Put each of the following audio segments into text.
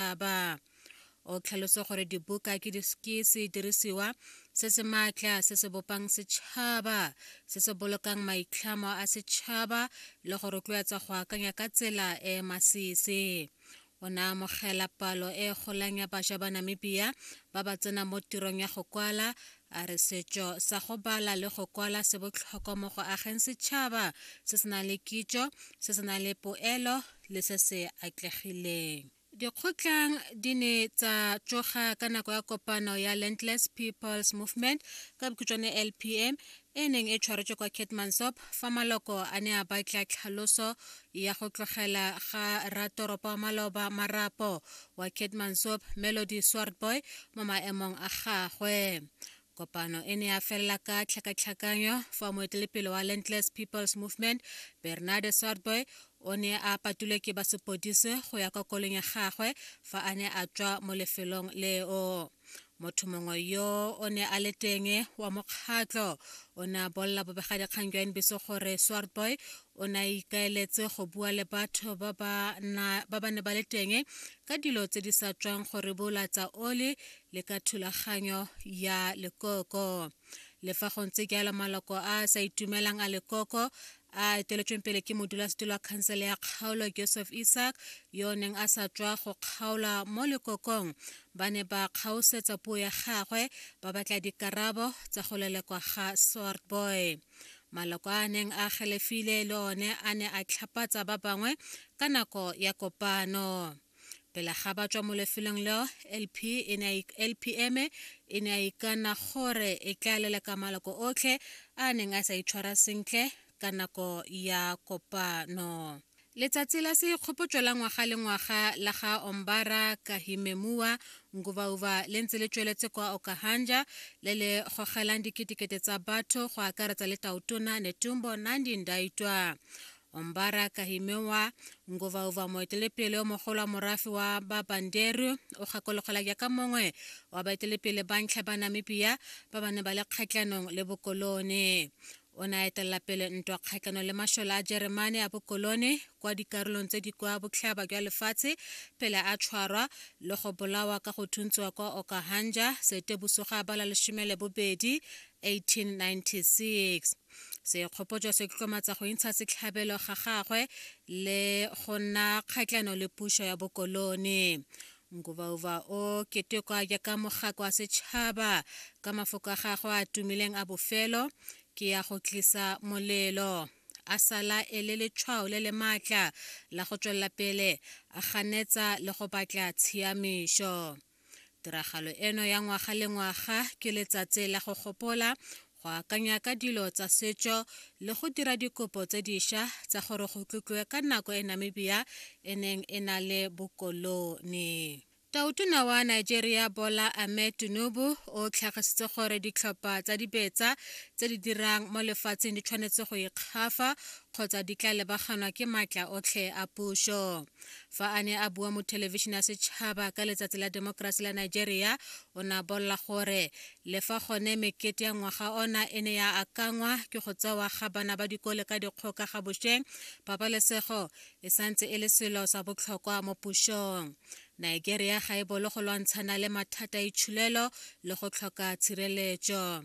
setšhaba o tlhalose gore dibuka ke sedirisiwa se se maatla se se bopang setšhaba se se bolokang maitlhamo a setšhaba le go rotloetsa go akanya ka tsela e e masisi o ne amogela palo e golang ya bašwa ba namibia ba ba tsenang mo tirong ya go kwala a re setšo sa go bala le go kwala se botlhokwa mo go ageng setšhaba se se nang le kitšo se se nang le poelo le se se atlegileng dikgotlang di ne tsa tsoga ka nako ya kopano ya landless peoples movement ka bokhutšwane lpm e neng e tshwaretswe kwa catmansop fa maloko a ne a batla tlhaloso ya go tlogela ga ratoropo wa maloba marapo wa Keetmanshoop Melody Swartboy mo maemong a gagwe kopano e ne ya felela ka tlhakatlhakanyo fa moetelepele wa Landless People's Movement Bernard Swartboy o ne a patulwe ke ba sepodise go ya kwa kolong ya gagwe fa a ne a tswa mo lefelong leo motho mongwe yo o ne a le teng wa mokgatlho o ne a bolela bobegadikgang jwa nbc gore swartboy o ne a ikaeletse go bua le batho ba ba ne ba le teng ka dilo tse di sa tswang gore bolatsa oli le ka thulaganyo ya lekoko le fa go ntse jalo maloko a a sa itumelang a lekoko a eteletsweng pele ke modulasetilo wa khansele ya kgaolo joseph isaac yo o neng a sa tswa go kgaola mo lekokong ba ne ba kgaosetsa puo ya gagwe ba batla dikarabo tsa go lelekwa ga swart boy maloko a neng a galefile le one a ne a tlhapatsa ba bangwe ka nako ya kopano Pele ga ba tswa mo lefelong leo, LP e ne a ik- LPM e ne a ikana gore e tla leleka maloko otlhe a a neng a sa itshwara sentle ka nako ya kopano. Letsatsi la seikgopotso la ngwaga le ngwaga la ga Ombara Kahimemua Ngubauba le ntse le tsweletse kwa Okahanja le le gogelang diketekete tsa batho go akaretsa le Tautona Netumbo Nandi-Ndaitwah. Ombara Kahimewa Nguvauva moetelepele o mogolo wa morafe wa ba Banderu o gakologelwa jaaka mongwe wa baetelepele ba ntlha ba Namibia ba ba ne ba le kgatlhanong le bokolone. O ne a etelela pele ntwa kgatlhanong le mashola a Jeremane a bokolone kwa dikarolong tse di kwa botlhaba jwa lefatshe pele a tshwarwa le go bolawa ka go thuntswa kwa Okahanja, Seetebosoga ba la lesome le bobedi, 1896. sekgopotso se tlotlomatsa go intsha setlhabelo ga gagwe le go nna kgatlhano le puso ya bokolone ngubauba o ketekwa jaaka mogako wa setšhaba ka mafoko a gagwe a tumileng a bofelo ke ya go tlisa molelo a sala e le letshwao le le maatla la go tswelela pele a ganetsa le go batla tshiamišo Tiragalo eno ya ngwaga le ngwaga ke letsatsi la go gopola go akanya ka dilo tsa setso le go dira dikopo tse dišwa tsa gore go tlotliwe ka nako e Namibia e neng e na le bokolone. Tautona wa Nigeria Bola Ahmed Tinubu o tlhagisitse gore ditlhopha tsa dibetsa tse di dirang mo lefatsheng di tshwanetse go ikgafa kgotsa di tla lebaganwa ke maatla otlhe a puso. fa a ne a bua mo thelebišene ya setšhaba ka letsatsi la demokrasi la nigeria o ne a bolela gore le fa gone mekete ya ngwaga ona e ne ya akangwa ke go tsewa ga bana ba dikole ka dikgoka ga bošweng pabalesego e santse e le selo sa botlhokwa mo pušong nigeria ga e bolo go lwantshana le mathata a itšhulelo le go tlhoka tshireletso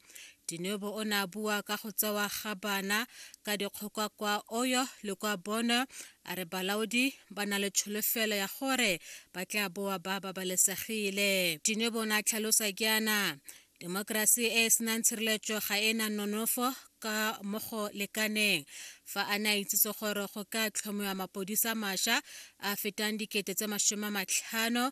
Dinyobo o ne a bua ka go tsewa ga bana ka dikgoka kwa Oyo le kwa Bono a re balaodi ba na le tsholofelo ya gore ba tla boa ba babalesegile. Dinyobo o ne a tlhalosa jaana, Demokrasi e e senang tshireletso ga e na nonofo ka mo go lekaneng fa a ne a itsise gore go ka tlhomiwa mapodisa masha a fetang dikete tse masome a matlhano